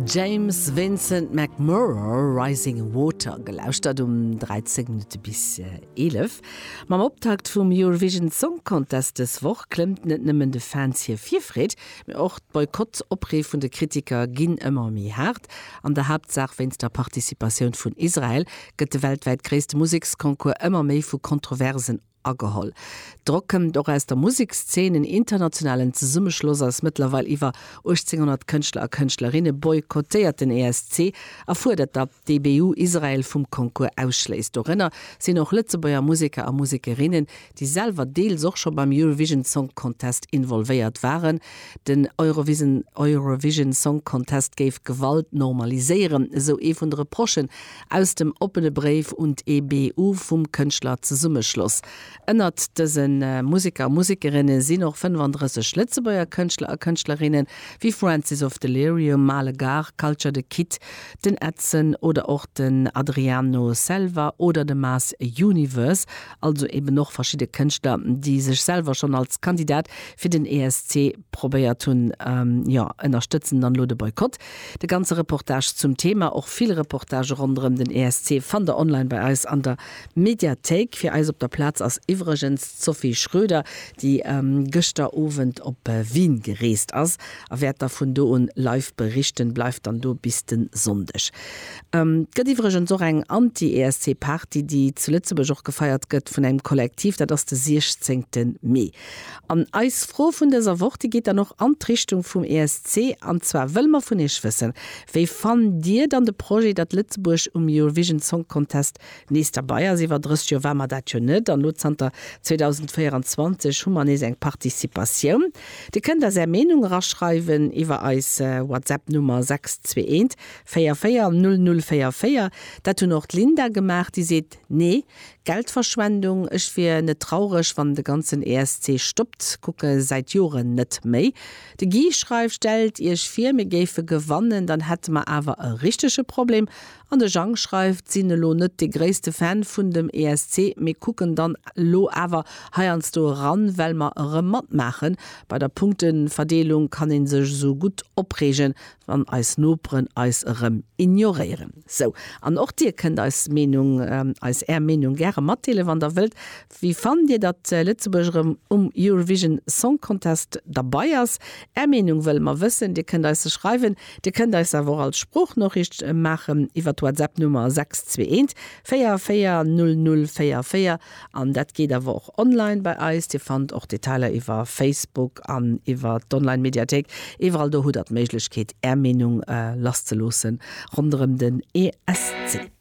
James Vincent McMurro, Rising Water, gelauschtert um 13 Minutte bis 11. Mam Optakt vum Eurovision Song Contest dës Woch klëmmt net nëmmen de Fans hir Virfreed, mee och d'Boykott-Opree vun de Kritiker ginn ëmmer méi haart. An der Haaptsaach wéinst der Participatioun vun Israel gëtt de weltwäit gréisste Museksconcours ëmmer méi vu Kontroversen ageholl. D'Rock këmmt och aus der Musekszeen, en internationalen Zesummeschloss aus mëttlerweil iwwer 1800 Kënschtler a Kënschtlerinne boykottéiert den ESC a fuerdert datt d'EBU Israel vum Concours ausschléisst. Dorënner sinn och Lëtzebuerger Museker a Musekerinnen, déi selwer deels och scho beim Eurovision Song Contest involvéiert waren. Den Eurovision Song Contest géif Gewalt normaliséieren, esou ee vun de Reprochen. aus dem oppene Bréif un d'EBU vum Kënschtlerzesummeschloss. Ënnert dëse Museker a Musekerinne sinn och 35 Lëtzebuerger Kënschtler a Kënschtlerinnen, wéi Francis of Delirium, Male Gare, Culture de Kid, den Edson oder och den Adriano Selva oder de Mass Universe. Also eben och verschidde Kënschtler, déi sech selwer schonn als Kandidat fir den ESC probéiert hunn, jo, ënnerstëtzen dann elo de Boykott. De ganze Reportage zum Thema, och vill Reportagë ronderëm den ESC, fannt der online bei eis an der Mediathéik. Fir eis op der Plaz ass iwwregens d'Sophie Schroeder, déi gëschter Owend op Wien gereest ass a wäert da vun do un live berichten. Bleift dann do bis de Sonndeg. Et gëtt iwwregens och eng Anti-ESC-Party, déi zu Lëtzebuerg och gefeiert gëtt vun engem Kollektiv, dat ass de 16 Mee. An eis Fro vun dëser Woch, déi geet dann och an d'Richtung vum ESC, an zwar wëlle mer vun iech wëssen, Wéi fannt dir dann de Projet, datt Lëtzebuerg um Eurovision Song Contest nees derbei ass? Iwwer 30 Joer ware mer dat jo net, an elo zanter 2024 hu mer nees eng Participatioun. Dir kënnt eis är Meenung eraschreiwen iwwer eis WhatsApp-Nummer 621 44 00 44. Dat hunn och d'Linda gemaach, déi seet, Nee, Geldverschwendung, ech wier net traureg wann de ganzen ESC stoppt, kucke säit Joren net méi. De Guy schreift, Stellt iech vir mir géife gewannen, dann hätte mer awer e richtege Problem. An de Jang schreift, sinn elo net de gréisste Fan vun dem ESC, mee kucken dann elo awer heiansdo eran well mer erëm matmaachen. Bei der Punkteverdeelung kann een sech esou gutt opreegen, wann eis Noperen eis erëm ignoréieren. Sou, an och dir kënnt eis Meenung, eis är Meenung gäre matdeelen, wann der wëllt. Wéi fannt dir, datt Lëtzebuerg erëm um Eurovision Song Contest derbei ass? Är Meenung wëlle mer wëssen. Dir kënnt eis se schreiwen, dir kënnt eis se awer och als Sproochnoriicht maachen iwwer d'Whatsapp Nummer 621 44 00 44. An dat geet awer och online bei eis. Dir fannt och Detailer iwwer Facebook an iwwer d'Online-Mediathéik. Iwwerall do hutt der d'Méiglechkeet, Är Meenung lasszeloossen ronderëm den ESC.